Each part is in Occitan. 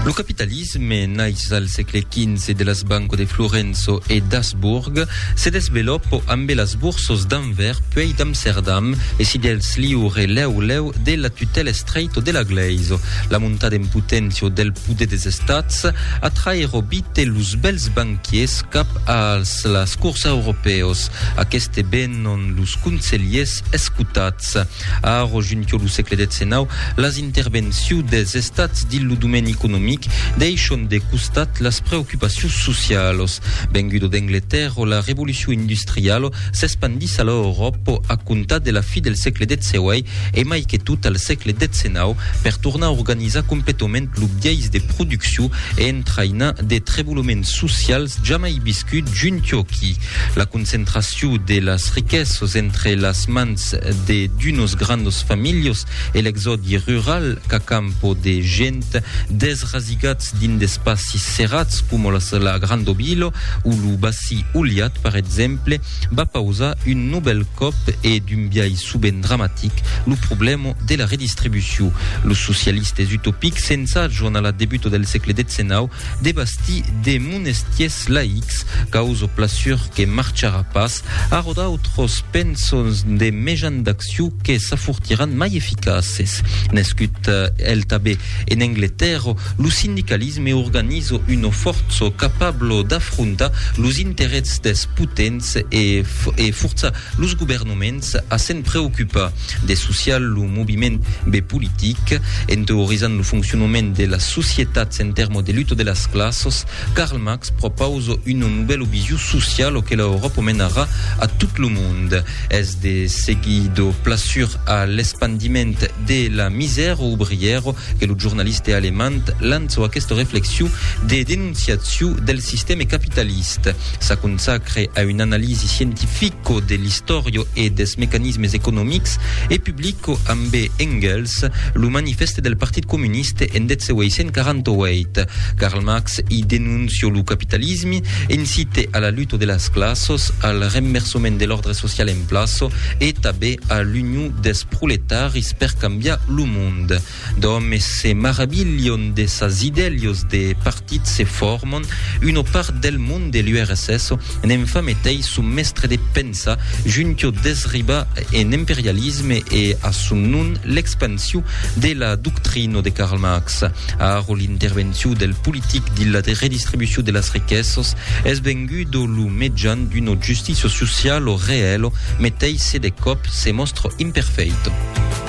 Lo capitalisme naix al sègle XV de las banco de Florenço e d'Asburg, se desveloppo ambe las borsos d'Anvers puèi d'Amserdam e si dels liure lèu lèu de la tutèla estreito de la glèiso. La montada en poténcia del poder des estats atraèro vite los bèls banquiers cap als las cors europèos. Aqueste venon los conselhiers escotats. Estats. A aro junquio lo sègle xix, las intervenciu des Estats dins lo domèni economic deishon de costat las preocupacius socialos. Vengudo d'Angletèrro, la revoluciu industrialo s'espandís a l'Euròpo a comptar de la fi del sègle xviii e mai que tot al sègle xix per tornar organizar completament lo biais de producciu e entrainar de treboloments socials jamai viscuts junquio qui La concentraciu de las riquesas entre las mans de d'unos grandos familhos e l'exòdi rural qu'a campo de gent desrasigats dins d'espacis serrats coma las la Grandobilo o lo Bací Ulhat per exemple va pausar un novèl còp e d'un biais sovent dramatic lo problèma de la redistribuciu. Los socialistes utopics s'ensajan a la debuta del sègle xix de bastir de monestiers laics, caus o plaçur que marcharà pas, arrò d'autros pensons de mejan d'acciu que s'afortiràn mai eficaces. Nescut el tabé en Angletèrra, lo sindicalisme organiza una força capabla d'afrontar los interèts dels potents e forçar los governaments a se'n preocupar. De social, lo moviment be politic, en teorizant lo fonccionnement de las societats en termo de luta de las classos, Karl Marx propausa una novèla vision sociala o que la Euròpa menarà a tot lo mond. Es de seguir do plasur a l'espandiment de la misèra obrièra que lo jornaliste alemand lança aquesta reflexion de denonciacion del sistème capitaliste. S'aconsacre a una analisi scientifica co de l'istòrio e des mecanismes economics, e publico ambe Engels lo Manifèste del Partit Comuniste en 1848. Karl Marx i denoncio lo capitalisme, incite a la luta de las classos, al renversament de l'òrdre social en plaço e tabé a l'union des proletaris per cambiar lo monde. D'òmes se maravilhon de sas idèlios de partit se formon una part del mond de l'URSS n'en fa metei son mèstre de pensa juntio desribar en imperialisme e a son non l'expansiu de la doctrino de Karl Marx aro l'intervenciu del politic dins la redistribuciu de las riquessos es vengudo lo mejan d'una justicia socialo reèlo metei se de còp se mòstra imperfeito.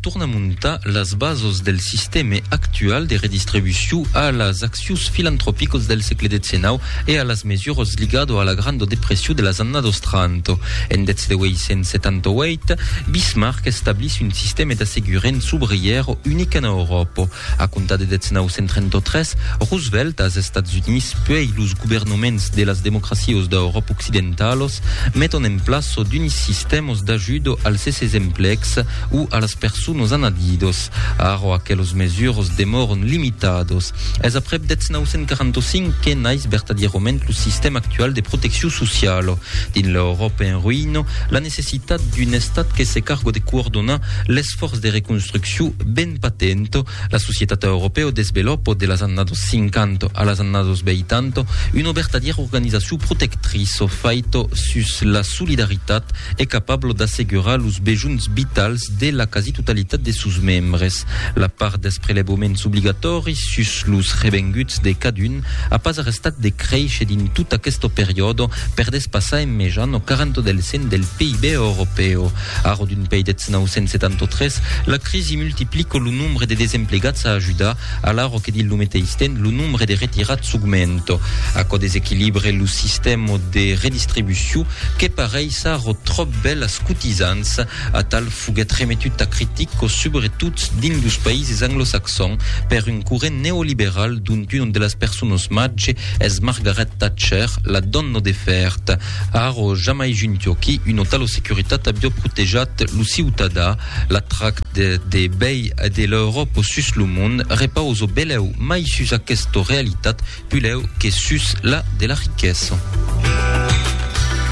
torna montar las bases del sistema actual de redistribució a las accions filantropicas del segle XIX e a las mesuras ligadas a la Grande Depression de las annadas 30. En 1878, Bismarck establís un sistema d'assegurament sobrièr unic en Euròpa. A comptar de 1933, Roosevelt, as Estats Units puèi los governaments de las democracios d'Euròp occidentalos meton en plaço d'unis sistèmas d'ajudo als esses emplecs o a las personas anadidos. Ara aquelos mesuras demòran limitados. Es aprèp 1945 que nais vertadierament lo sistèma actual de proteccion sociala. Dins l'Euròpa en ruïna, la necessitat d'un estat que se carga de coordonar l'esfòrç de reconstruccion ben Patento, la societat europèo desvelopò de las annados 50 a las annados 80 una vertadièra organizacion protectriço faito sus la solidaritat e capablo d'assegurar los bejunhs vitals de la quasi totalitat de sos membres. La part dels prelevoments obligatòris sus los revenguts de cadun a pas arrestat de créisher dins tot aqueste periòde per despassar en mejan o 40 del cent del PIB europèo. Arro d'un pei deth 973, la crisi multiplico lo nombre de desemplegats a ajudar, alarro que dins lo meteis temps lo nombre de retirats s'augmento. Aquò desequilibre lo sistèma de redistribucion que pareis arro tròp bèl as cotizants. Atal foguèt remetut tà critica, subretot dins los païses anglosaxons, per un corrent neoliberal dont una de las personas màger es Margaret Thatcher, la dòna de fèrta. Arro, jamai junto qui un otà lo securitat avió protejat lo ciutadà, la trac de de bèi e de l'Euròp sus lo mond repauso belèu mai sus aquesta realitat pulèu que sus la de la riquesa.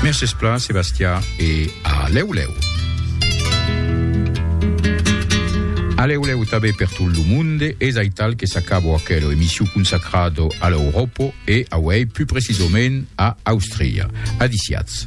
Mercés plan Sebastià e. A lèu lèu. A lèu lèu tabé per tot lo monde, es aital que s'acabo aquelo emissiu consacrado a l'Europo e auei pus precisomènt a Austria. Adisiatz.